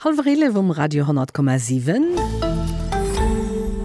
Hallwer 11 um Radio 10,7.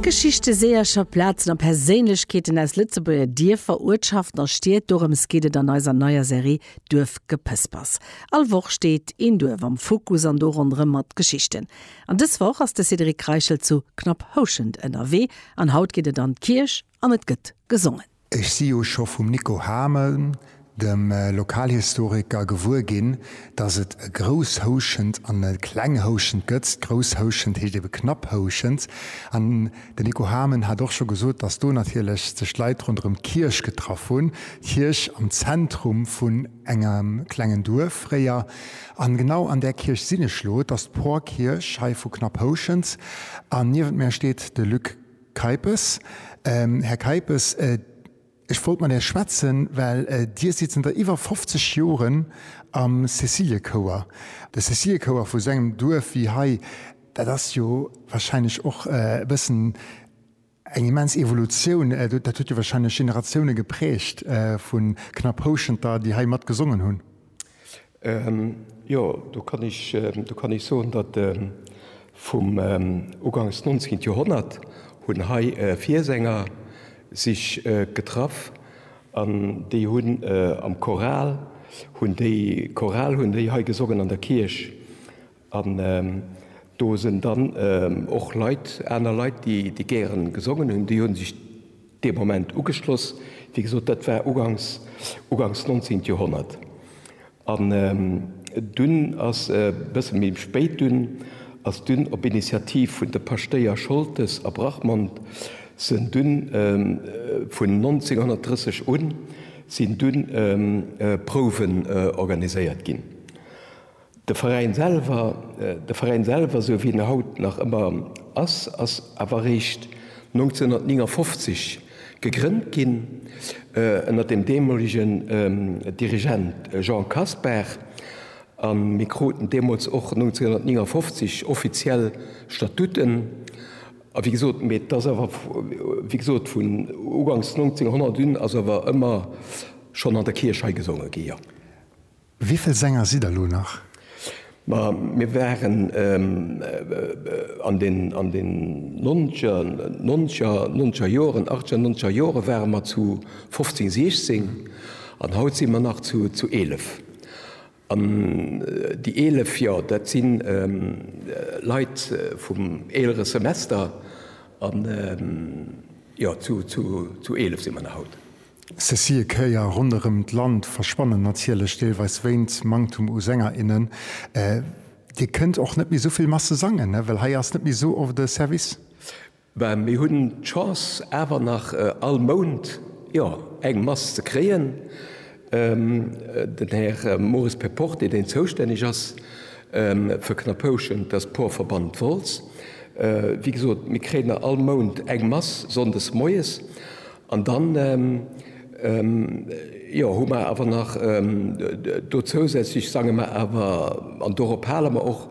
Geschichte, Seeërcher, Plazen a Perséinlechkeeten aus Lëtzebuerger Dierfer, Uertschaften a Stied, dorëms geet et an eiser neier Serie Duerfgepëspers. All Woch steet een Duerf am Fokus an do ronderëm mat Geschichten. An dës Woch ass de Cédric Reichel zu Knapphouschent ënnerwee an haut geet et an d'Kierch, An et gëtt gesongen. Ech si jo scho vum Nico Hamel, dem Lokalhistoriker, gewuer ginn, datt et e Grousshouschent an e Klenghouschent gëtt. Grousshouschent heescht ebe Knapphouschent. An den Nico Hamel hat och scho gesot, datt do natierlech sech d'Leit ronderëm d'Kierch getraff hunn, d'Kierch am Zentrum vun engem klengen Duerf fréier. An genau an där Kierch sinn ech elo. Et ass d'Porkierch hei vu Knapphouschent. An niewent mär steet de Luc. Keipes, Här Keipes, ech wollt mat Är schwätzen, well Dir sidd zënter iwwer 50 Joren am Cäciliëchouer. De Cäciliëchouer vu sou engem Duerf wéi hei, dat ass jo wahrscheinlech och e bëssen eng immens Evolutioun. Dat huet jo wahrscheinlech Generatioune geprägt vu Knapphouschenter, déi hei mat gesongen hunn. Jo, do kann ech, do kann ech soen, datt vum ugangs 19. Joerhonnert hunn hei Viersänger sech getraff an déi hunn am Choral hunn déi Choral hunn déi hei gesongen an der Kierch An do sen dann och Leit, aner Leit, déi gären gesongen hun, déi hun sech dee Moment ugeschloss. Wéi gesot, dat war ugangs, ugangs 19 Joerhonnert. An dun as e bësse méi spéit, dun as dun op Initiativ vun de Paschtéier Scholtes a Brachmond, sen dun vun 1930 un, sin dun Prouwen organiséiert gin. De Veräin selwer, de Veräin selwer esou wéi en haut nach ëmmer ass, ass awer eréischt 1959 gegrënnt ginn ënnert dem deemolegen Dirigent Jean Kasper a mir kruten deemools och 1959 offiziell Statuten a wéi gesot, mee d'ass awer wéi gesot vun ugangs 1900 un ass awer ëmmer schonn an der Kierch hei gesonge gi, jo. Wivill Sänger sidd der lo nach? Ma mir waren an den an den nonzeger nonzeger nonzeger Joren achtzeger nonzeger Jore ware mer zu fofzéng siechzéng an haut si mer nach zu zu eelef. An déi eelef, jo dat si Leit vum eelere Semester an jo zu zu zu eelef si mer nach haut. Cécile Kéier, Ronderëm d'Land verschwannen natierlech deelweis wéint Manktum u Sänger, innen. Dir kënnt och net méi esou vill Masse sangen, well hei ass net méi esou oft e Service? Ben, mir hunn d'Chance awer nach all Mount, jo, eng Mass ze kréien. Den Här Maurice Perporté, deen zoustänneg ass fir Knappouschen, dat ass d'Porverband Wolz, wéi gesot, mir kréien nach all Mount eng Mass sonndes moies. An dann, jo, hu mer awer nach do zousätzlech, sange mer awer, an dorop hale mer och,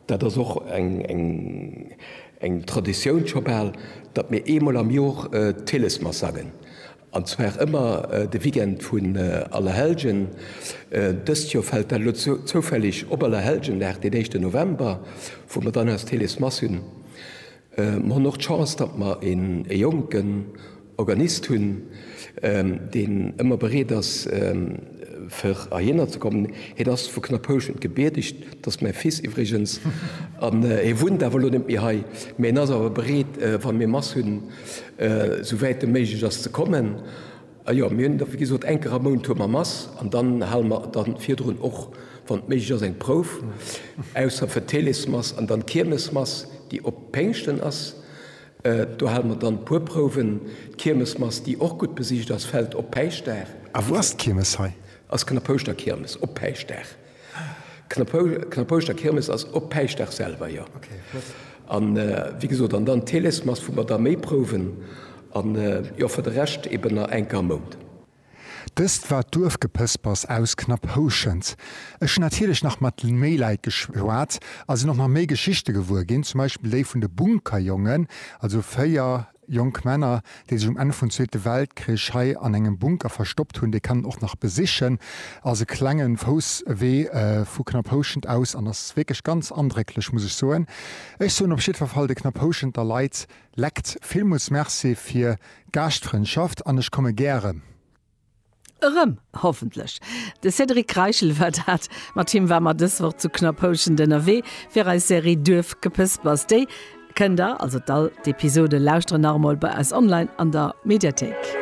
dat ass och eng Traditioun scho bal, datt mir eemol am Jor d'Hillesmass sangen, an zwar ëmmer de Weekend vun Allerhellgen. Dëst Jor fält dat elo zoufälleg op Allerhelljendag, den éischten November, wou mer dann eis d'Hillesmass hunn. Mer hunn och d'Chance, datt mer e jonken Organist hunn, deen ëmmer bereet ass, fir heihinner ze kommen. Hien ass vu Knapphouschent gebierteg, dat ass mäi Fils iwwregens, an e wunnt awer elo net méi hei, mä en ass awer bereet, wa mir Mass hunn, esou wäit e méiglech ass, ze kommen. A jo, mir hunn da wéi gesot eng Kéier am Mount hu mer Mass an dann hale mer da virdrun och, wann et méiglech ass, eng Prouf, ausser fir d'Helesmass an dann d'Kiermesmass, déi op Péngschten ass. Do hale mer dann e puer Prouwen. D'Kiermesmass, déi och gutt besicht ass, fält op Päischtdag. A wou ass d'Kiermes hei? Ass Knappouschter Kiermes op Päischtdag. Knappouschter Kirmes ass op Päischtdag selwer jo an wéi gesot an dann Teles Mass vu mer da méi prouwen an jo fir de Rescht eben nach enk am Mount. Dëst war d'Duerfgepëspers aus Knapphouschent. Ech hunn natierlech nach mat méi Leit geschwat a sinn och nach méi Geschichte gewuer ginn, zum Beispill déi vun de Bunkerjongen, also 4 Jonk Männer, déi sech um Enn vun Zweete Weltkrich hei an engem Bunker verstoppt hunn, déi kann en och nach besichen. Ass e klenge Fousswee vu Knapphouschent aus an ass wierklech ganz andrécklech, muss ech soen. Ech soen op jiddwer Fall de Knapphouschenter Leit, lekt villmools Merci fir d'Gaaschtfrëndschaft an ech komme gäre. Erëm, hoffentlech. De Cédric Reichel war dat. Mat him ware mer dës Woch zu Knorr-Pouschent ënnerwee fir eis Serie Duerfgepëspers. Déi kënnt der, also d'al d'Episode, lauschteren nach emol bei eis online an der Mediathéik.